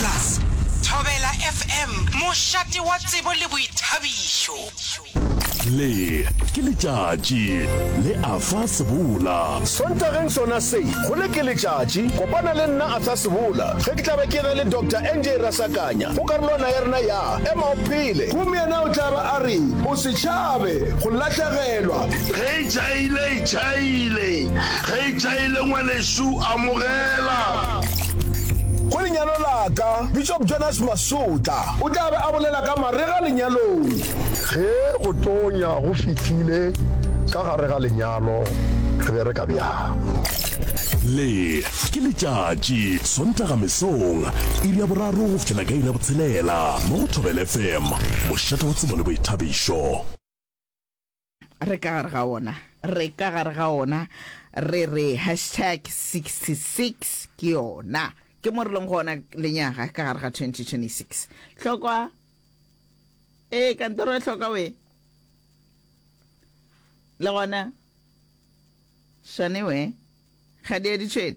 Plus, Thobela FM, mošate wa tsebo le boithabišo. Le ke letšatši le Arthur Sebola. Sontageng sona se, go le ke letšatši. Kopana le nna Arthur Sebola ge ke tla be ke re le Doctor NJ Rasakanya go karolwana ya rena ya Ema o Phele. Gomme yena o tla ba a re, O se tšhabe go lahlegelwa. Ge e tšhaile, e tšhaile. Ge e tšhaile, ngwanešu, amogela. Go lenyalo la ka, Bishop Jonas Masotla o tla be a bolela ka marega lenyalong. Ge go tonya go fihlile ka gare ga lenyalo, re bereka bjang? Le ke letšatši, Sontaga mesong, iri ya boraro go fihlela ka iri ya botshelela mo go Thobela FM, mošate wa tsebo le boithabišo. Re ka gare ga ona. Re ka gare ga ona. Re re hashtag 66 ke yona. Ke mo re leng gona lenyaga ka gare ga 2026. Hlokwa. E kantoro ya hlokwa we. Le gona. Shane we. Ga di a ditšhwene.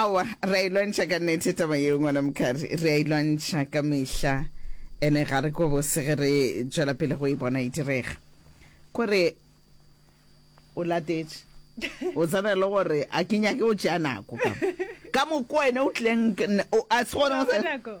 Aowa, re a e lwantšha ka nnete taba yeo, ngwana Mokari. Re a e lwantšha ka mehla. Ene ga re kwe bose ge re tšwela pele go e bona e direga. Kore o latetše. O tsena e le gore a ke nyake go tšea nako ka mo. Ka moko wena o tlileng, a se gona o tsena.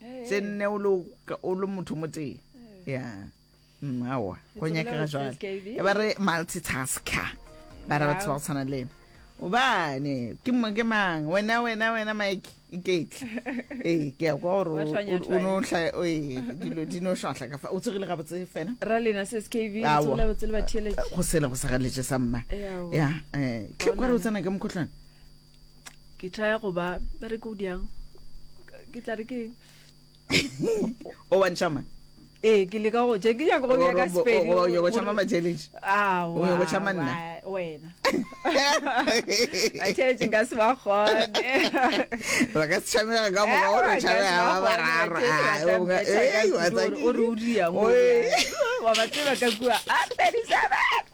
tse nne o le motho mo tee ya mm, aowa go nyakega jale e ba re multitasker ba re batho ba go tshwana le obane ke mang wena wena wena mike iketla ee ke ya kwa gore dilo di no šwatlha ka fa o tsogile gabotse fena go sele go sa galetše sa mma ya um tle kware o tsena ke mokgotlwane ke tla go ba ba re ke o diang ke tla re ke o wa ntšhama ee ke leka go je ke nyaka go bja ka sepedi o nyaka go tšhama ma-challenge o nyaka go tšhama nna wena challenge nka se ba gone ba ka se tšhamega ka moka o re tšhamega ba bararo o re o diang wa ba tseba ka kua a ah, 37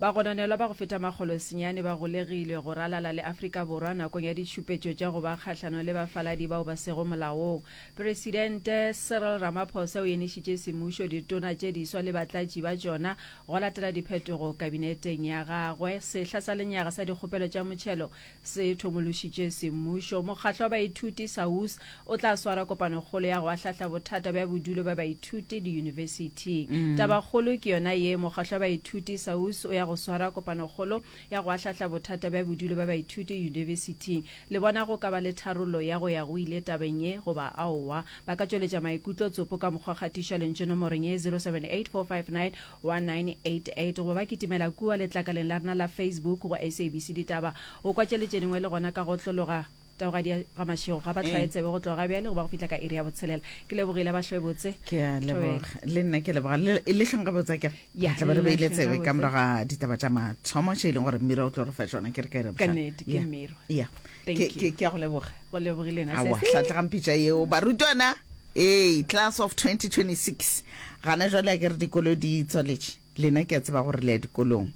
Bagononelwa ba go feta makgolo senyane ba golegilwe go ralala le Afrika Borwa nakong ya ditšhupetšo tša go ba kgahlano le bafaladi bao ba sego molaong. Presidente Cyril Ramaphosa o enišitše semmušo ditona tše diswa le batlatši ba tšona go latela diphetogo kabineteng ya gagwe. Sehla sa lenyaga sa dikgopelo tša motšhelo se thomološitše semmušo. Mokgatlo wa baithuti, SAUS, o tla swara kopanokgolo ya go ahlahla bothata bja bodulo bja baithuti diyunibesithing. Tabakgolo ke yona ye, mokgatlo wa baithuti, SAUS, o ya go swara kopanokgolo ya go ahlahla bothata bja bodulo bja baithuti yunibesithing. Le bona go ka ba le tharollo ya go ya go ile tabeng ye goba aowa? Ba ka tšweletša maikutlo tsopo ka mokgwa kgatišwa lentšu nomorong ye, 078 459 wa 988 go ba kitimela kua letlakaleng la rena la Facebook go SABC Ditaba. O kwa tše le tše dingwe le gona ka go tlologa taogadi ya ga mašego ga ba tlwae tsebe go tloga bjale go ba go fihla ka iri ya botshelela ke lebogile ba hlwe botse ke a leboga le nna ke leboga le le hlong ga botsa ke Ya, tla ba re le beile hlong tsebe gabotse. ka morago ga ditaba tša mathomo tše e leng gore mmira o tlo re fa tšona ke re ka re ka bohlale. nnete ke Ya. mmiro Yeah. Thank Ke- you. ke ke a go leboga go lebogile na awa sesi hlatlegang pitša yeo barutwana ee class of 2026 gana jwale a ke re dikolo di tswaletše lena ke a tseba gore le ya dikolong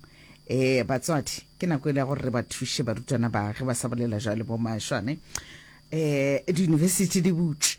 um batswadi ke nako e le ya gore re ba thuše barutwana ba ge ba sa bolela jwale bo mašwane um diyunibesithi di butše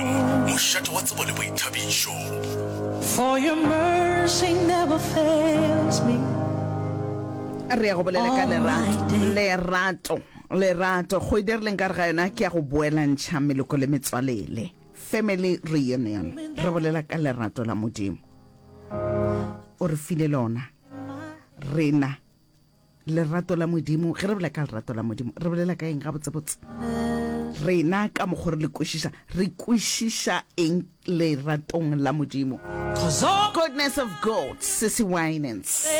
Mošate wa tsebo le boithabišo. For your mercy never fails me. Re ya go bolela ka lerato, lerato, lerato. Kgwedi e re leng ka re ga yona ke ya go boelantšha meloko le metswalele, family reunion. Re bolela ka lerato la Modimo, o re file lona rena. lerato la modimo ge re bolela ka lerato la modimo re bolela ka eng gabotsebotse rena ka mokgwa re le kwešiša re kwešiša eng leratong la modimo goodness of god sissy winans